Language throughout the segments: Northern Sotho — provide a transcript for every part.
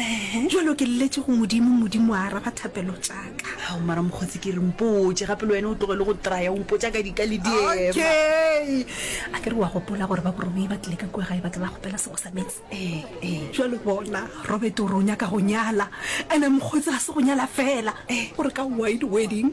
Ehe. Jwalo ke lletše go Modimo, Modimo a araba thapelo tša ka. Ao, mara mokgotsi ke re mpotše gape le wena o tloge le go traya o mpotša ka dika le diema. Okay. A ke re wa gopola gore ba Borobei ba tlile ka kua gae ba tla ba kgopela sego sa meetse? Ee, ee. Jwale bona, Robert o re o nyaka go nyala, ene mokgotsi ga se go nyala fela, gore ka wide wedding.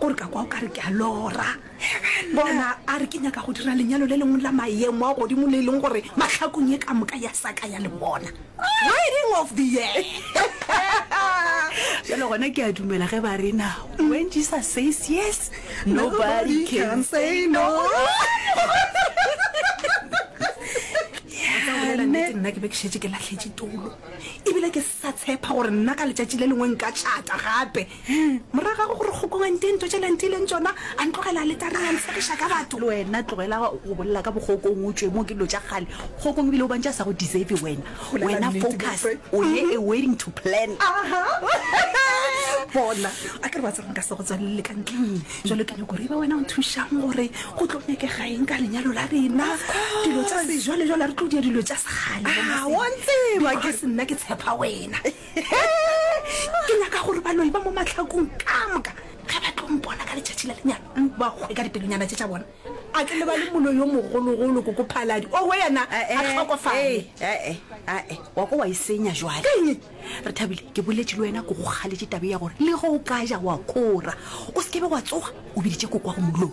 Gore ka kwa o ka re ke a lora. Bona, a re ke nyaka go dira lenyalo le lengwe la maemo a godimo le e leng gore mahlakong ye ka moka ya sa ka ya le bona. Wedding of the year! Bjale gona ke a dumela ge ba re na, when Jesus says yes, nobody can say no. Nnete nna ke be ke šetše ke lahletše toulo ebile ke sa tshepa gore nna ka letšatši le lengwe nka tšhata gape. Morago ga go gore kgokong a nti e ntotše le a ntileng tšona, a ntlogela aletareng a ntshegiša ka batho. Le wena tlogela go bolela ka bokgokong, o tšwe mo ke dilo tša kgale. Kgokong ebile o bantši a sa go deserve wena. Wena focus o ye a wedding to plan. Bona a ke re wa tseba nka se go tswalele ka ntle. Jwale ke nyoko re ba wena o nthušang gore go tlo nyakega eng ka lenyalo la rena. Dilo tša sejwalejwale a re tlo dia dilo tša sekgale. Wa ntseba ke se nna ke tshepa wena. ke nyaka gore baloi ba mo matlhakong ka moka ge ba tlo mpona ka letšatši la lenyalo ba kgwe ka dipelonyana tše tša bona a ke le ba le moloi yo mogologolo ko ko phaladi o go yena a eh, eh, tlhokofale ee eh, wa ko wa e senya jwale re thabile ke boletše le wena ko go kgaletše tabe ya gore le ge o ka ja wa kora o se kebe wa tsoga o biditše kokwa go moloi